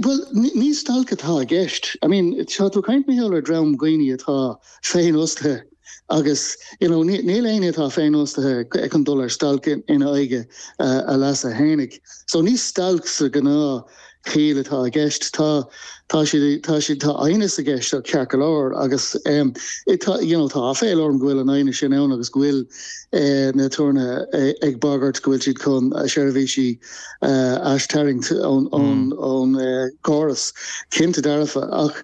Bhuel, ní stailc atá i gceist. I mean, tá tú ag caint, Mícheál, ar dream dhaoine atá féinfhostaithe agus, you know, níl éinne atá féinfhostaithe chun dul ar stailc in aghaidh a leasa fhéinig. So, ní stailc sa ghnáth chiall atá i gceist. Tá, tá siad, tá siad, tá aighneas i gceist, tá, ceart go leor, agus ehm, i, tá, you know, tá aiféal orm go bhfuil an aighneas sin ann agus go bhfuil eh, na aturnaetha ag bagairt go bhfuil siad chun a seirbhísí, aistarraingt ón gcóras cinnte dearfa. Ach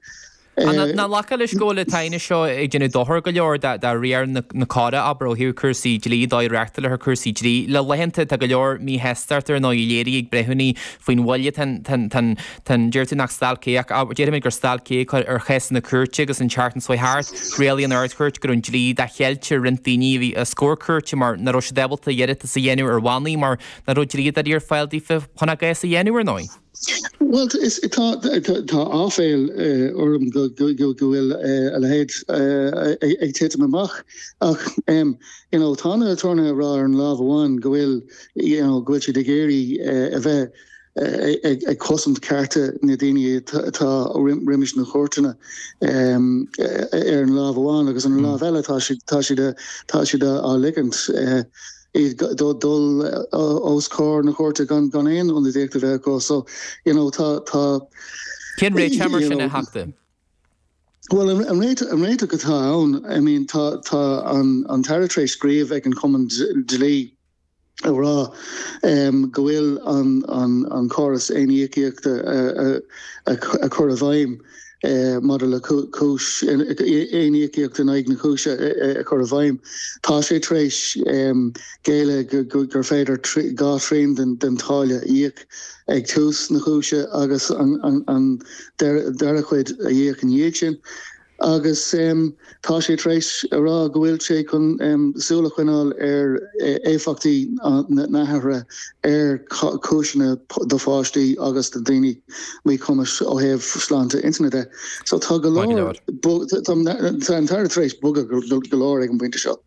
nach nglacfá leis go bhfuil an t-aighneas seo ag déanamh dochair go leor do riar na córa, abair, ó thaobh cúrsaí dlí, an dóigh a reáchtáiltear cúrsaí dlí le laethanta? Tá go leor míshástachta ar ndóigh á léiriú ag breithiúnaí faoin mhoill atá an, tá an, deir tú nach stailc é ach déarfaimid gur stailc é, ag cur ar chásanna cúirte agus an tseachtain seo thart rialaigh an Ardchúirt go raibh an dlí dá cheilt ar roinnt daoine a bhí os comhair cúirte mar nach raibh siad ábalta iarratas a dhéanamh ar bhannaí mar nach raibh dlíodóirí ar fáil daofa chun a gcás a dhéanamh, ar ndóigh? Bhuel, tá aiféal orm go bhfuil a leithéid ag titim amach, ach tá na aturnaetha ag rá ar an lámh amháin go bhfuil siad ag iarraidh a bheith ag cosaint cearta na daoine atá roimis na cúirteanna ar an lámh amháin agus ar an lámh eile tá siad á ligint iad dul os comhair na cúirte gan aon ionadaíocht a bheith acu. So, you know, tá, tá, Cén réiteach mar sin, a Theachta? Bhuel, an ré, an réiteach atá ann, I mean, tá, tá an, an tAire tar éis scríobh ag an Chumann Dlí ag rá go bhfuil an, an, an córas aon-íocaíochta a, a, a, a chur i bhfeidhm. maidir le cúis, aon íocaíocht in aghaidh na cúise a chur i bhfeidhm. Tá sé tar éis géilleadh gur féidir dhá thrian den táille a íoc ag tús na cúise agus an dara cuid a íoc ina dhiaidh sin agus, Tá sé tar éis a rá go bhfuil sé chun súil a choinneáil ar éifeachtaí na hathruithe ar chúiseanna do pháistí agus do dhaoine míchumais ó thaobh sláinte intinne de. So, tá go leor, tá an tAire tar éis bogadh go leor ag an bpointe seo.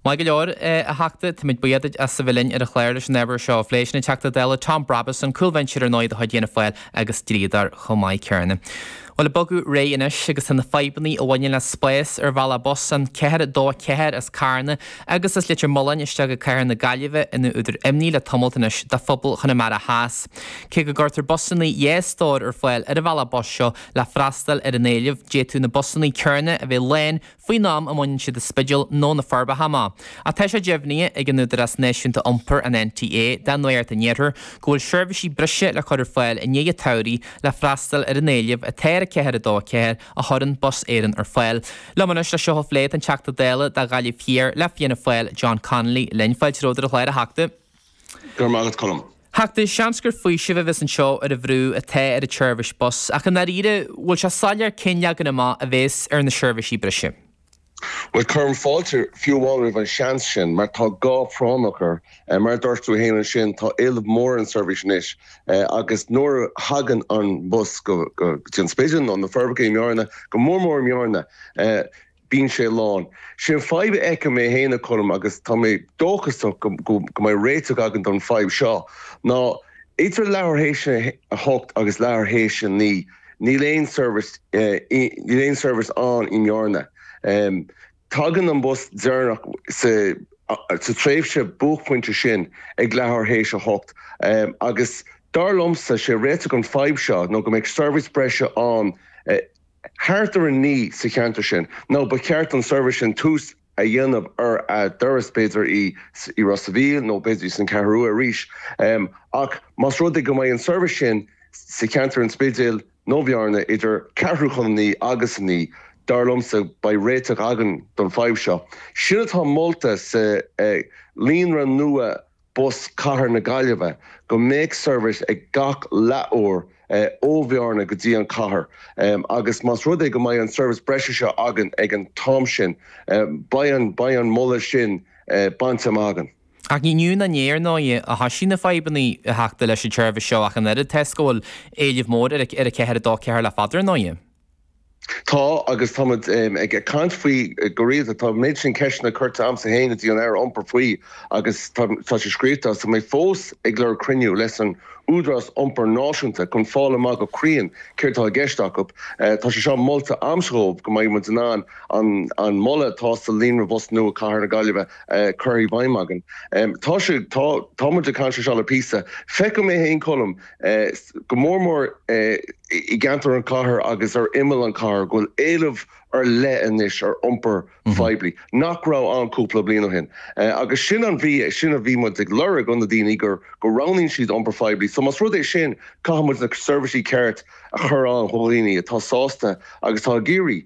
Maith go leor, a Theachta. Táimid buíoch duit as a bheith linn ar an chlár leis an ábhar seo a phlé. Sin an Teachta Dála Tom Brabazon, cúlbhinseoir ar ndóigh de chuid Fhianna Fáil agus dlíodóir chomh maith céanna. Bhuel, ag bogadh ar aghaidh anois agus tá na fadhbanna a bhaineann le spás ar bhealach bus an 424 as Carna agus as Leitir Mealláin isteach i cathair na Gaillimhe ina údar imní le tamalt anois do phobal Chonamara Theas. Cé go gcuirtear busanna dhá stór ar fáil ar an bhealach bus seo le freastal ar an éileamh, d'fhéadfadh na busanna céanna a bheith lán faoin am a mbaineann siad an Spidéal nó na Forbacha amach, ach tá sé deimhnithe ag an Údarás Náisiúnta Iompair, an NTA, do Nuacht an Iarthair, go bhfuil seirbhísí breise le cur ar fáil i ndiaidh an tsamhraidh le freastal ar an éileamh atá ar an 424 a chuireann Bus Éireann ar fáil. Liom anois le seo a phlé, tá an Teachta Dála do Ghaillimh Thiar le Fianna Fáil, John Connolly, linn, fáilte romhat ar an gclár a Theachta. Go raibh maith agat Colm. A Theachta seans gur faoiseamh a bheas anseo ar an bhrú atá ar an tseirbhís bus, ach i ndáiríre, bhfuil sé soiléir cén leagan amach a bhéas ar na seirbhísí breise? Bhuel, cuirim fáilte fiú amháin roimh an seans sin, mar tá gá práinneach air. Mar a dúirt tú fhéin ansin, tá éileamh mór ar an seirbhís anois, agus nuair a thagann an bus go dtí an Spidéal, nó na Forbacha i mBearna, go mór mór i mBearna, Bíonn sé lán. Sin an fadhb a fheicim mé féin a Choilm agus tá mé dóchasach go mbeidh réiteach againn don fadhb seo ná idir leathuair théis a hocht agus leathuair théis a naoi níl aon seirbhís ann i mBearna. Tagann an bus deireanach sa tréimhse buaicphointe sin ag leathuair théis a hocht agus dar liomsa sé réiteach an fadhb seo nó go mbeidh seirbhís breise ann i thart ar a naoi sa cheantar sin, nó ba cheart don tseirbhís sin tús a dhéanamh ar an turas, b'fhéidir i Ros a' Mhíl nó b'fhéidir san Cheathrú Rua arís. Ach más rud é go mbeidh an tseirbhís sin sa cheantar an Spidéil nó Bhearna idir ceathrú chun a naoi agus a naoi, dar liomsa, beidh réiteach againn don fadhb seo. Sin atá molta sa Líonra Nua Bus Chathair na Gaillimhe, go mbeadh seirbhís ag gach leathuair ó Bhearna go dtí an chathair agus más rud é go mbeidh an seirbhís breise seo againn ag an t-am sin beidh an moladh sin bainte amach againn. Ach ní inniu ná inné, ar ndóigh, a thosaigh na fadhbanna a Theachta leis an tseirbhís seo ach an oiread toisc go bhfuil éileamh mór ar an 424 le fada, ar ndóigh. Tá, agus táimid ag caint faoi go rialta. Tá an méid sin ceisteanna curtha agamsa féin go dtí an Aire Iompair faoi agus tá sé scríofa agus tá mé fós ag lorg cruinniú leis an Údarás Iompair Náisiúnta chun fáil amach go cruinn céard atá i gceist acu. Tá sé seo molta a'msa dhóibh go mbeidh muid in ann an moladh atá sa líonra bhus nua Chathair na Gaillimhe a chur i bhfeidhm againn. Tá sé, tá, táimid ag caint ar seo le píosa. Feiceann mé féin Colm go mór mór i gceantar an chathair agus ar imeall an chathair, go bhfuil éileamh ar leith anois ar iompar phoiblí nach raibh ann cúpla bliain ó shin. Agus sin a bhí, sin a bhí muid ag lorg ó na daoine, go roghnaíonn siad iompar phoiblí. So más rud é sin, caithfidh muid na seirbhísí ceart a chur ann do dhaoine atá sásta agus atá ag iarraidh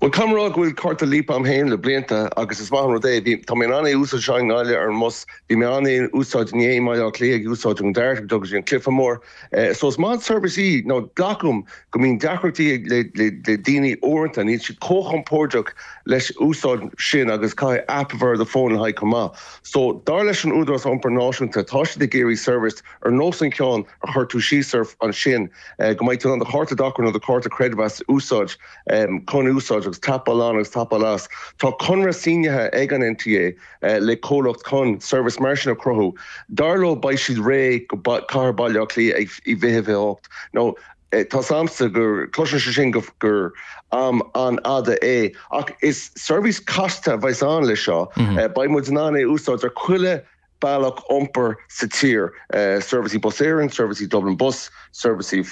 Bhuel, caithfidh mé a rá go bhfuil cárta Leap a'm fhéin le blianta, agus is maith an rud é. Bhí, tá mé in ann é a úsáid anseo i nGaillimh ar an mbus, bhí mé in ann é a úsáid inné i mBaile Átha Cliath ag úsáid an DART ag dul go dtí an cluiche mór, eh, so is maith an tseirbhís í, now glac uaim go mbíonn deacrachtaí ag, le, le, le daoine uaireanta, níl siad chomh compordach leis an úsáid sin agus caithfidh app a bheith ar do fón le haghaidh chomh maith. So, dar leis an Údarás Iompair Náisiúnta, tá siad ag iarraidh seirbhís ar nós an cheann a chuir tú síos ar, ansin, eh, go mbeidh tú in ann do chárta dochair nó do chárta creidmheas a úsáid, Chun úsáid agus tapáil on agus tapáil off, tá conradh sínithe ag an NTA le comhlacht chun seirbhís mar sin a chruthú. Dar leo, beidh siad réidh go cathair Bhaile Átha Cliath i 2028. Now tá a fhios a'msa go gcloiseann sé sin gur am an-fhada é. Ach is seirbhís chasta a bheas ann le seo. Beidh muid in ann é a úsáid ar chuile bealach iompair sa tír, seirbhísí Bus Éireann, seirbhísí Dublin Bus, seirbhísí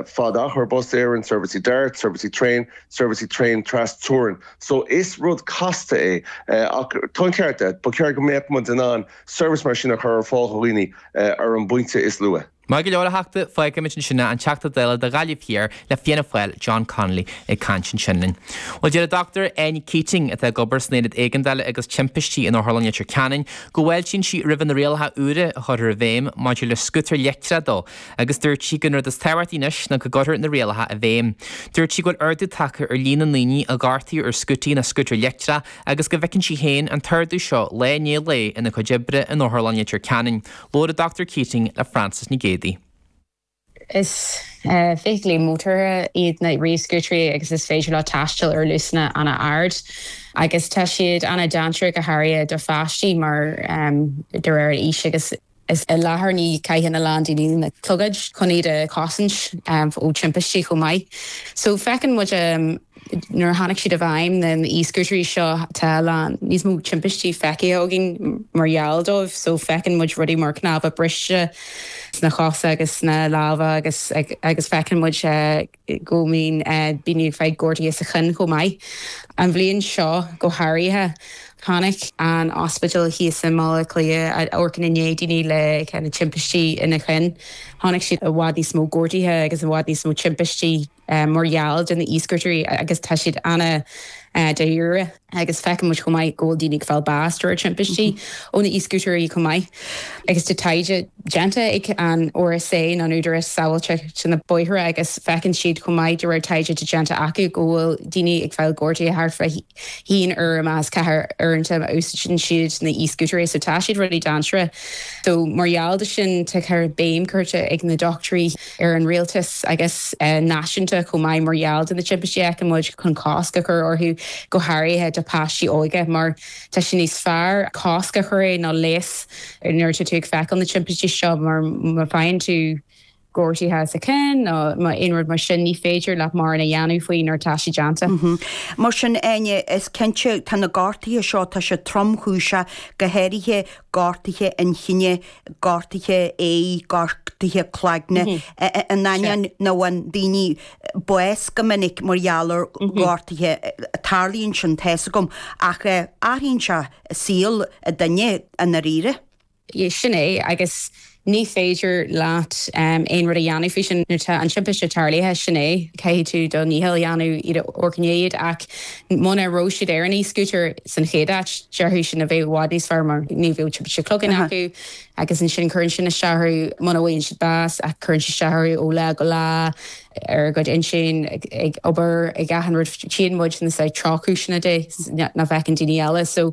fad-achair Bus Éireann, seirbhísí DART, seirbhísí traein, seirbhísí traein trasteorann. So, is rud casta é, ach tá an ceart agat, ba cheart go mbeadh muid in ann seirbhís mar sin a chur ar fáil do dhaoine ar an bpointe is luaithe. Maith go leor a Theachta, fágfaimid ansin é, an Teachta Dála do Ghaillimh Thiar le Fianna Fáil, John Connolly ag caint ansin linn. Bhuel, deir an Dr Áine Keating, atá ag obair san Aonad Éigeandála agus Timpistí in Otharlann Leitir Ceanainn, go bhfáiltíonn sí roimh na rialacha úra a chuirfear i bhfeidhm maidir le scútair leictreacha dó agus dúirt sí gurb é an rud is tábhachtaí anois ná go gcuirfear na rialacha i bhfeidhm. Dúirt sí go bhfuil ardú tagtha ar líon na ndaoine a gortaíodh ar scútaí na scútair leictreacha agus go bhfeiceann sí féin an t-ardú seo lá i ndiaidh lae ina cuid oibre in Otharlann Leitir Ceanainn. Labhair an Dr Keating le Frances Nic Géadaigh. Is feithiclí mótartha iad na ríomhscútairí agus is féidir leo taisteal ar luasanna an-ard agus tá siad an-dainséarach go háirithe do pháistí mar, de réir a aois agus, is i láthair ní chaitheann a lán daoine na clogaid chun iad a chosaint ó timpistí chomh maith. So feiceann muid. Nuair a tháinig siad i bhfeidhm, na e-scútarí seo, tá a lán níos mó timpistí feicthe againn mar gheall dóibh. So feiceann muid rudaí mar cnámha briste sna cosa agus sna lámha agus agus feiceann muid go mbíonn daoine ag fáil gortaithe sa chinn chomh maith. An bhliain seo go háirithe, tháinig an ospidéal thíos i mBaile Átha Cliath a amharcann i ndiaidh daoine le timpistí ina chinn, tháinig siad i bhfad níos mó gortaithe agus i bhfad níos mó timpistí. mar gheall de na e-scútairí agus tá siad an-dáiríre agus feiceann muid chomh maith go bhfuil daoine ag fáil bás de réir timpistí ó na e-scútairí chomh maith agus tá taighde déanta ag an RSA nó an tÚdarás Sábháilteachta ar na Bóithre agus feiceann siad chomh maith de réir taighde atá déanta acu go bhfuil daoine ag fáil gortaithe thart fá haon uair as ceathair uaireanta a úsáideann siad na e-scútairí so tá siad ródhainséarach so mar gheall de sin tá béim curta ag na dochtúirí ar an rialtas agus náisiúnta chomh maith mar gheall de na timpistí a fheiceann muid chun cosc a chur orthu, go háirithe do páistí óga, mar tá sé níos fearr cosc a chur air ná leigheas nuair atá tú ag feiceáil na timpistí seo mar má faigheann tú. gortaithe sa chionn nó má aon rud mar sin ní féidir leat mórán a dhéanamh faoi nuair atá sé déanta. Mar sin Áine, is cinnte tá na gortaithe seo, tá siad tromchúiseach, go háirithe gortaithe inchinne, gortaithe ae, gortaithe cloigne, in ainneoin nach bhfaigheann daoine bás go minic mar gheall ar ghortaithe, tarlaíonn sin, tá fhios agam, ach athraíonn sé saol duine i ndáiríre. Sin é, agus ní féidir leat aon rud a dhéanamh faoi sin nuair atá an timpiste tarlaithe, sin é, caithfidh tú do dhícheall a dhéanamh iad a fhoirceannadh, ach. Muna raibh siad ar an e-scooter san chéad áit, déarfá go mbeadh sé i bhfad níos fearr mar ní bheadh timpiste cloiginn acu agus ansin cuireann sin isteach orthu, muna bhfaigheann siad bás ach cuireann sé isteach orthu ó lá go lá, ar a gcuid intinn, ag obair, ag achan rud. Tchíonn muid na drochchúiseanna de nach bhfeiceann daoine eile.